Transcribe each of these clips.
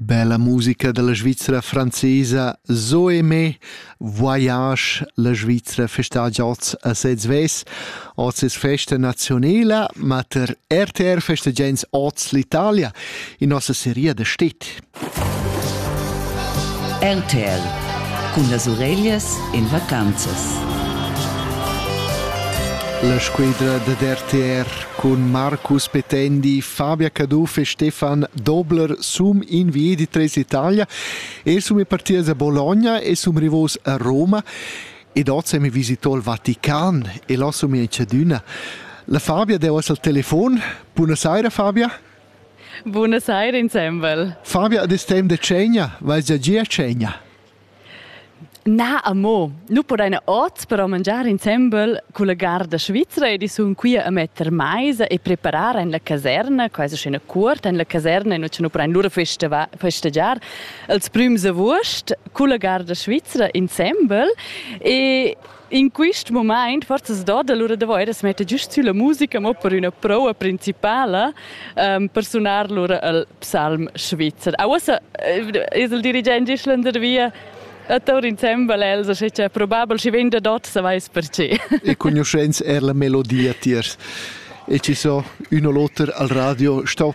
Bella musica dalla Svizra francesa Zoe me Voyage la Svizra festagia oz a sez ves oz es festa nazionela ma ter RTR festagiains oz l'Italia in nossa seria da stit RTR cun las ureglias in vacanzas La squadra da RTR Cun Marcus Petendi, Fabia Caduff e Stefan Dobler sum inviedi tres l'Italia e sum e partidas a Bologna e sum rivos a Roma ed oz mi visitò il Vatican e là sum in cedüna. La Fabia deu as al telefon. Buonasera Fabia. Buonasera insembel. Fabia, ad temp de cegna, vais già gia a cegna? Na, amo. Nu podaina hoz però mangiar insembel culla garda svizra ed i sun quia a metter maisa e preparar in la caserna, quaisa scena cuorta in la caserna, nu cha nu podain lura festeva festegiar els prüms avuost culla garda svizra insembel e In quist mumaint forzas doda lura da vair as metter güst sülla musica, mo per üna proua principala per sunar lura il psalm svizzer. A uossa es il dirigent Islander via a tour insembel, Elsa, sche c'è probabel si venda dot, sa vais perché. E conoscenz er la melodia tiers. E ci so, uno l'oter al radio, sto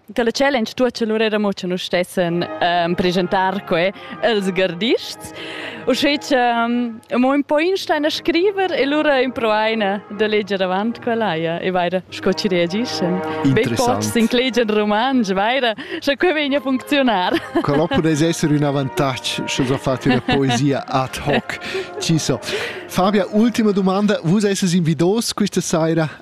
Che la challenge tuocha lur era mo cha nus stessen ehm, presentar que als gardists. Uschè cha ehm, mo ün po instain a scriver e lura improvaina da leger avant quella ja e vaira sco ci reagiscen. Be pochs inclegian romansch, vaira, scha que vegna a funcziunar. Quello podess essere un avantage, sche so fate una poesia ad hoc. Ci so. Fabia, ultima domanda. Vus esses invidos questa saira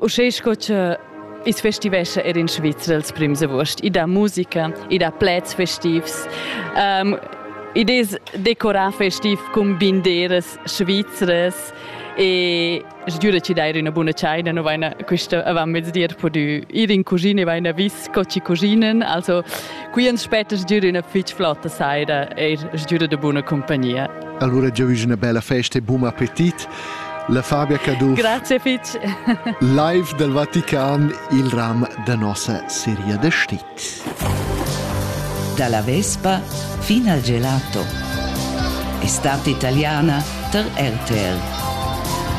Uschè sco che Is festivescha er in Svizra als prims august. I dà musica, i dà pleds festivs. Um, id es decorar festiv cun binderas svizras e sgiura ci dair üna buna tschaina, no vaina quista avant mezdi er pudü ir in cuschina e vaina vis co ci cuschinen, also qui ans spetta sgiura üna fich flotta saira e sgiura da buna compagnia. Allora giovige una bella festa e buon appetit La Fabia Caduff. Grazie fitg. Live dal Vatican, il ram da nossa seria da stit. Dalla Vespa fino al gelato. Estate italiana per RTR.